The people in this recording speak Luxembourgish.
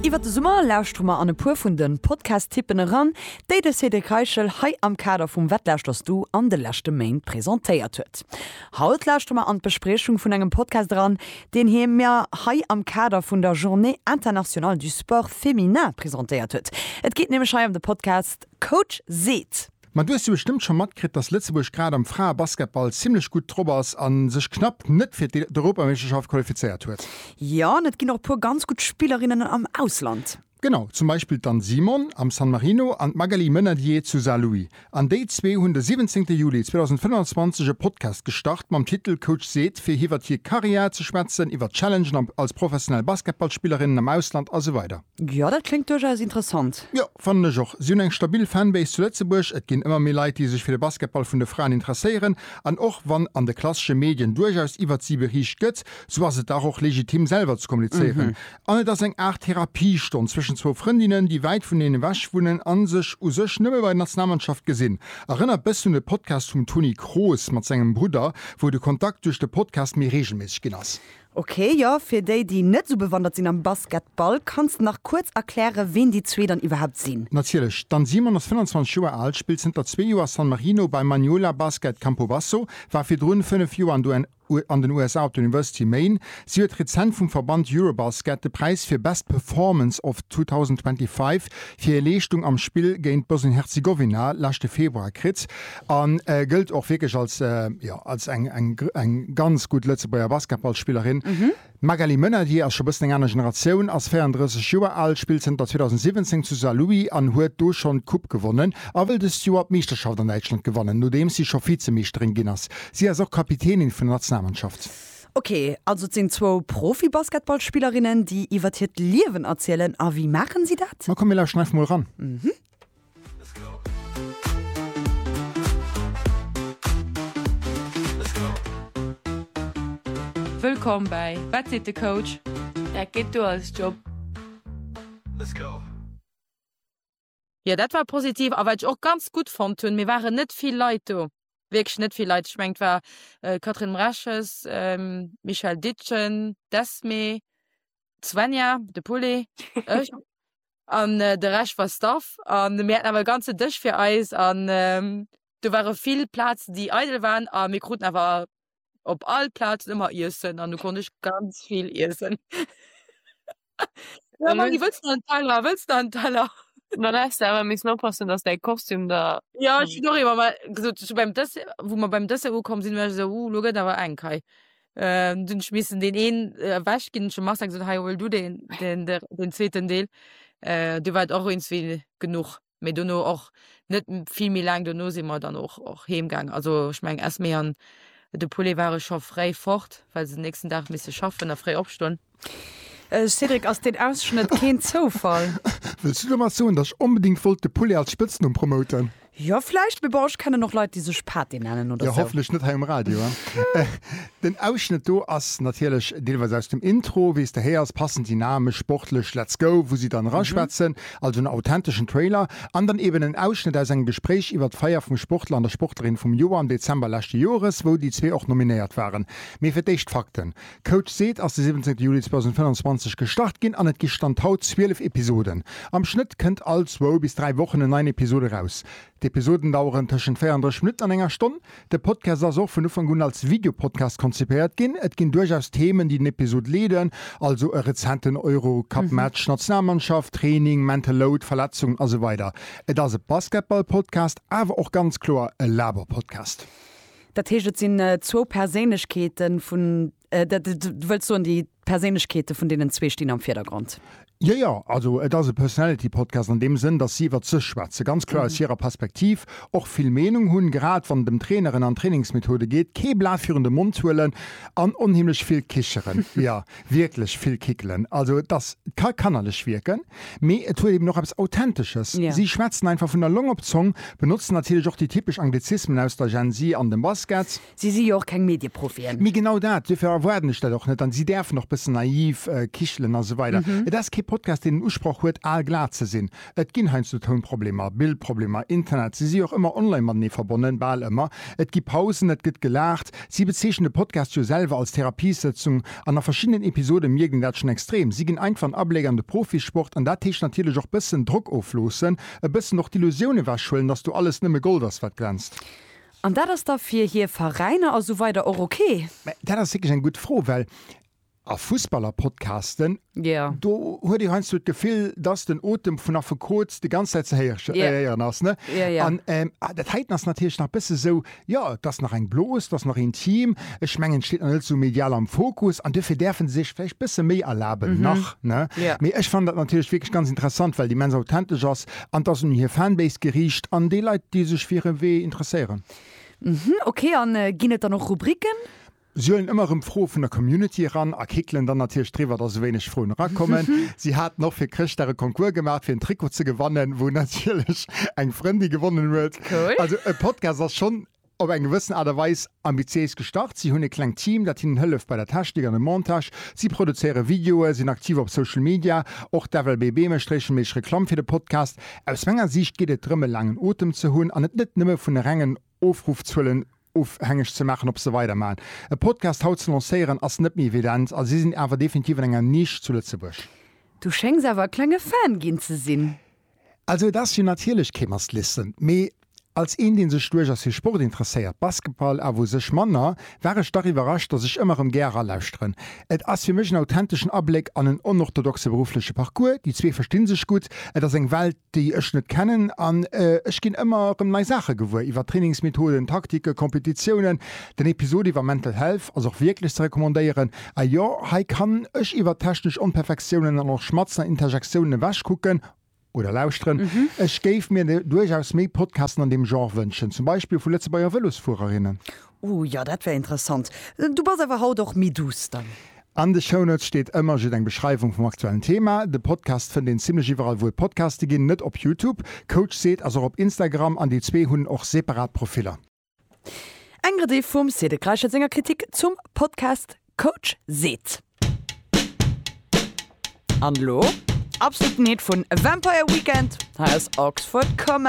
Iwwer de Summer lauschtere mer an e puer vun de Podcast-Tippen eran, déi de Cédric Reichel hei am Kader vum Wat lauschterst du an de leschte Méint presentéiert huet. Haut lauschtere mer an d'Bespriechung vun engem Podcast eran, deen hie mir hei am Kader vun der Journée internationale du sport féminin presentéiert huet. Et geet nämlech hei ëm de Podcast Coach seet. Ma du hues jo bestëmmt scho matkritt, dass Lëtzebuerg grad am Fraebasketball zimmlech gutt drop ass a sech knapp net fir d'Europameeschterschaft qualifizéiert huet. Jo, an et ginn och e puer ganz gutt Spillerinnen am Ausland. Genau, zum Beispill d'Anne Simon am San Marino an d'Magali Menadier zu Saarlouis. An déi zwee hunn de 17 Juli 2025 e Podcast gestart mam Titel Coach seet, fir hiwwert hir Karriär ze schwätzen, iwwert d'Challengen als professionell Basketballspillerinnen am Ausland a sou weider. Jo, dat kléngt duerchaus interessant. Jo, fannen ech och. Si hunn eng stabil Fanbase zu Lëtzebuerg. Et ginn ëmmer méi Leit, déi sech fir de Basketball vun de Fraen interesséieren. An och wann an de klassesche Medien duerchaus iwwert si beriicht gëtt, sou ass et dach och legitim, selwer ze kommunizéieren. An et ass eng Aart Therapiestonn zwëschen zwou Frëndinnen, déi wäit vuneneen ewech wunnen a sech u sech nëmme bei der Nationalmannschaft gesinn. Erënnert bëssen un de Podcast vum Toni Kroos mat sengem Brudder, wou de Kontakt duerch de Podcast méi reegelméisseg ginn ass. Ok, jo, fir déi, déi net esou bewandert sinn am Basketball, kanns de nach kuerz erklären, ween déi zwee dann iwwerhaapt sinn? Natierlech, d'Anne Simon ass 25 Joer al, spillt zënter zwee Joer a San Marino bei Maniola Basket Campobasso, war virdrun fënnef Joer an de an den USA op der University of Maine. Si huet rezent vum Verband Eurobasket de Präis fir Best Performance of 2025 fir hir Leeschtung am Spill géint Bosnien-Herzegowina leschte Februar kritt. A gëllt och wierklech als, jo, als eng, eng, eng ganz gutt Lëtzebuerger Basketballspillerin. D'Magali Menadier ass scho bëssen eng aner Generatioun, ass 34 Joer al, spillt zënter 2017 zu Saarlouis an huet do schonn d'Coupe gewonnen a wëll dëst Joer d'Meeschterschaft an Däitschland gewannen, nodeems si scho Vizemeeschterin ginn ass. Si ass och Kapitänin vun der Nationalmannschaft. Ok, also et sinn zwou Profi-Basketballspillerinnen, déi iwwert hiert Liewen erzielen. A wéi maachen si dat? Ma komm, mir lauschteren einfach mol eran. Wëllkomm bäi Wat seet de Coach? Dat geet duer als Job. Jo dat war positiv a wat ech och ganz gutt fonnt hunn, mir waren net vill Leit do, wierklech net vill Leit, ech mengen et war Catherine Mreches, Michèle Ditgen, d'Esmée, d'Svenja, de Poullet, ech. An de Rescht war Staff. An mir haten awer e ganze Dësch fir eis. An do ware vill Plazen, déi eidel waren. A mir kruten awer op all Plazen ëmmer Iessen. An du konnt ech ganz vill iessen. Jo, Maggy, wëlls de nach en Teller? Wëlls de nach en Teller? Ma da häss de awer missen oppassen, dass däi Kostüm der. Jo, ech hunn och eemol gesot, wou mir beim Dessert ukomm sinn, elo gëtt et awer enk hei. Ähm, dun ech missen deen een äh, wäsch ginn schon Master gesot hei hol du den den der, den zweeten Deel äh, du war och eens wie genug méi duno och net viel méi lang duno si mer dann och och heemgang also ich meng ess méi an de Poulet ware scho fréi fort weil se den nächsten Dach misse schaffen a fréi opstoen. Cédric, ass deen Ausschnëtt keen Zoufall? Wëlls du domat soen, datt ech onbedéngt wollt de Poulet als Spëtznumm promoten? Jo, vläicht, mee bon, ech kennen och Leit, déi sech Pate nennen oder sou. Jo, hofflech net hei um Radio. Den Ausschnëtt do ass natierlech deelweis aus dem Intro, wéi s de héiers, passend dynamesch, sportlech, let's go, wou si dann eraschwätzen, also en authenteschen Trailer, an dann eben en Ausschnëtt aus engem Gespréich iwwert d'Feier vum Sportler an der Sportlerin vum Joer am Dezember leschte Joeres, wou déi zwee och nominéiert waren. Mee fir d'éischt d'Fakten. Code Seed ass de 17 Juli 2025 gestart ginn an et gi Stand haut 12 Episoden. Am Schnëtt kënnt all zwou bis dräi Wochen en neien Episod eraus. D'Episoden daueren tëschent 34 Minutten an enger Stonn. De Podcast ass och vun Ufank un als Videopodcast konzipéiert ginn. Et ginn duerchaus Themen, déi den Episod leeden, also e rezenten Eurocup-Match, Nationalmannschaft, Training, Mental Load, Verletzungen a sou weider. Et ass e Basketball-Podcast, awer och ganz kloer e Laber-Podcast. Dat heescht, et sinn zwou Perséinlechkeeten vun, du wëlls soen, déi Perséinlechkeete vun deenen zwee stinn am Virdergrond? Jo, jo, also et ass e Personality Podcast an deem Sënn, datt si iwwert sech schwätzen, ganz kloer aus hirer Perspektiv, och vill Meenung hunn, grad wann et ëm Traineren an Trainingsmethode geet, kee Blat virun de Mond huelen an onheemlech vill kicheren. Jo, Wierklech vill Kickelen. Also et ass, et ka kannerlech wierken, mee et huet eben och eppes Authentesches. Si schwätzen einfach vun der Long op d'Zong, benotzen natierlech och déi typesch Anglizismen aus der Gen-Z an dem Basket. Si si jo och keng Medieprofien. Mee genau dat, duerfir erwaarden ech dat och net. An si däerfen och bëssen naiv kichelen a sou weider. Et ass kee Podcast, deen den Usproch huet, aalglat ze sinn. Et ginn heiansdo Tounproblemer, Bildproblemer, Internet, si si och ëmmer online matenee verbonnen, bal ëmmer. Et gi Pausen, et gëtt gelaacht. Si bezeechnen de Podcast jo selwer als Therapiesëtzung an a verschiddenen Episode mierkt een dat schonn extrem. Si ginn einfach en Abléck an de Profisport an dat heescht natierlech och bëssen Drock ofloossen, e bëssen och d'Illusioun ewechhuelen, dass do alles nëmme Gold ass, wat glänzt. An dat ass da fir hir Veräiner a sou weider och ok? Mä dat ass wierklech eng gutt Fro, well A Fussballer-Podcasten, yeah. do huet ee heiansdo d'Gefill, dass den Otem vun Affekot déi ganz Zäit ze héieren yeah. ass. Ne? Yeah, yeah. An ähm, ah, dat heiten ass natierlech nach bësse sou, ja, dass nach eng Blos, dass nach intim. Ech mengen, steet nach net so medial am Fokus an dofir däerfen se sech vläicht bësse méi erlaben mm -hmm. nach. Ne? Yeah. Mee ech fand dat natierlech wierklech ganz interessant, well déi immens authentisch ass an dass un hir Fanbase geriicht an déi Leit, déi sech fir e Wee interesséieren. Mhm, okay, an äh, ginn et dann och Rubriken? Si huelen ëmmer erëm Froe vun der Community eran a kickelen dann natierlech driwwer, datt esou wéineg Froen erakommen. Si haten och fir Chrëschtdag e Concours gemaach, fir en Trikot ze gewannen, wou natierlech eng Frëndin gewonnen huet. Also e Podcast ass schonn op eng gewëssen Aart a Weis ambitiéis gestart. Si hunn e klengt Team, dat hinnen hëlleft bei der Technik an dem Montage. Si produzéiere Videoe, sinn aktiv op Social Media. Och d'FLBB mécht reegelméisseg Reklamm fir de Podcast. Aus menger Siicht geet et drëm, e laangen Otem ze hunn an et net nëmme vun e rengen Ofruffzuelen ofhängeg ze maachen, ob se weidermachen. E Podcast haut ze lancéieren ass net méi evident a si sinn awer definitiv an enger Nisch zu Lëtzebuerg. Du schéngs awer e klenge Fan ginn ze sinn. Also et ass jo natierlech kee must listen, mee als een dee sech duerchaus fir Sport interesséiert, Basketball awer u sech manner, war ech dach iwwerrascht, datt ech ëmmer erëm gär eralauschteren. Et ass fir mech en authenteschen Abléck an en onorthodoxe beruffleche Parcours, déi zwee versti sech gutt, et ass eng Welt, déi ech net kennen an ech ginn ëmmer erëm nei Saache gewuer iwwer Trainingsmethoden, Taktiken, Kompetitiounen. Den Episod iwwer Mental Health ass och wierklech ze recommandéieren. A jo, hei kann ech iwwer technesch Onperfektiounen an och Schmatzen an Interjektiounen ewech kucken oder lauschteren. Ech géif mir duerchaus méi Podcasten an deem Genre wënschen, zum Beispill vu Lëtzebuerger Vëlosfuererinnen. Ooh jo, dat wär interessant. Du bass awer haut och méi duuss dann. An de Shownotes steet ëmmer jidd eng Beschreiwung vum aktuellen Thema. De Podcast fënnt een zimlech iwwerall wou et Podcaste ginn, net op Youtube. Coach Seed ass och op Instagram an déi zwee hunn och separat Profiller. Eng Rediff vum Cédric Reichel senger Kritik zum Podcast Coach Seed. An elo absoluten Hit vun Vampire Weekend hei aus Oxford Comedy.